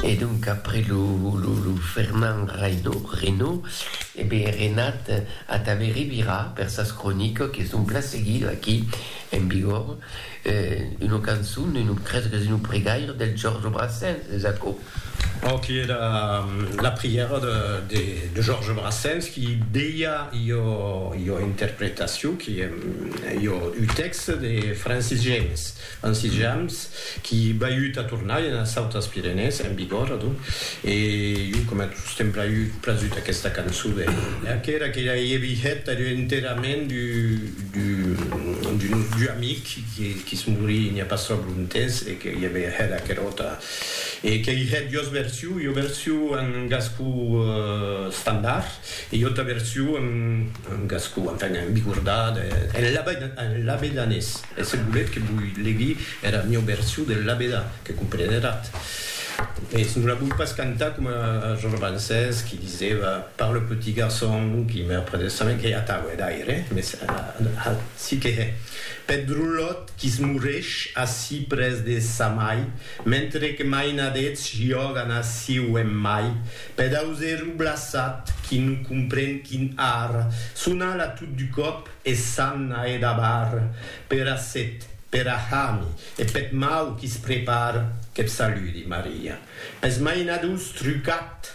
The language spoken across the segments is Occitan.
E donc après lo Fernand Reynaud, e be Renat ata be revira per sas cronicas que son plan seguido aquí en Bigòrre, una cançon, un crese qu'es un pregaire del Georges Brassens, es aquò? Ò qui era la prièra de Georges Brassens qui deia ua interpretacion qui en ua un tèxte de Francis James. En sitjams qui baiut a tornar enas autas Pirenèes, en Bigòrre, adonc, e jo coma tot sostemp braiut, prasut aquesta cançon de qu'era que ja i èvi hèt er enterrament d'un nostre amic qui's morí n'i a pas tròp lontemps e que i èvi hèt aquera auta e qu'ei hèt duas versions, ua version en gascon estandard e ua auta version en gascon, enfin, en bigordà, en labedanés. E se volet que voi legui era mieu version del labedà, que comprenerat. Mès non la voi pas cantar coma Georges Brancès qui diseva par le petit garçon qui meurt près de sa main, qu'ei atau, hè, d'aire, mès ací que hè, peth drolot qui se moresh ací près de sa mai, mentre que mainadets jògan ací o en mai, peth auserou blaçat qui non compren quin ar, son ala tot du còp, E s'an a edabar pera set, pera hami e peth mau qui's prepar, qu'eth saludi, Maria. Pes mainadors trucat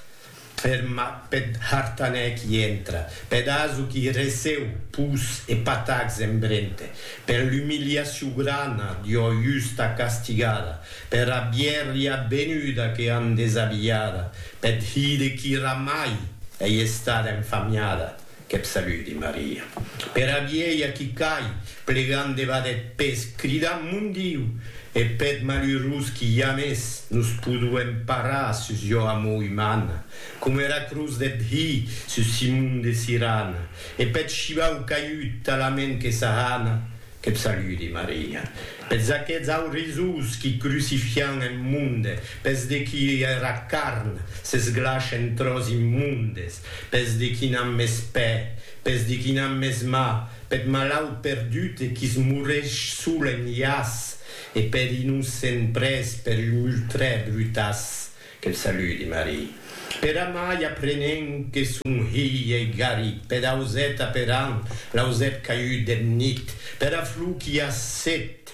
per peth hartanèr qui entra, peth aso qui receu pus e patacs en brente, per l'umiliacion grana d'ua justa castigada, pera bièrria benuda que an desabilhada, peth hide qui ramai ei estada enfamiada, Qu'eb saludi Maria. Pera vielha qui cai, plegant debat eth pes, cridant Mon Diu! E peth malurós qui jamès nos poduem parar sus jo amor umana, coma era cruz deth Hi sus Simon de Sirana, e peth shivau caiut talament que s'ahana, qu'eb saludi Maria. Peths aqueths aurizós qui crucifian en monde, peths de qui era carn s'esglash en tròç immondes, Pes de qui n'an mès pè, pes de qui n'an mès mà, peth malaut perdut e qui's moreish sol en iàs, e per innocent prés per un ultrè brutàs, que'l saludi Marie. Per amai aprenent que son hilh ei garit peth auset aperant l'ausèp caiut deth nit, pera flor qu'i a set,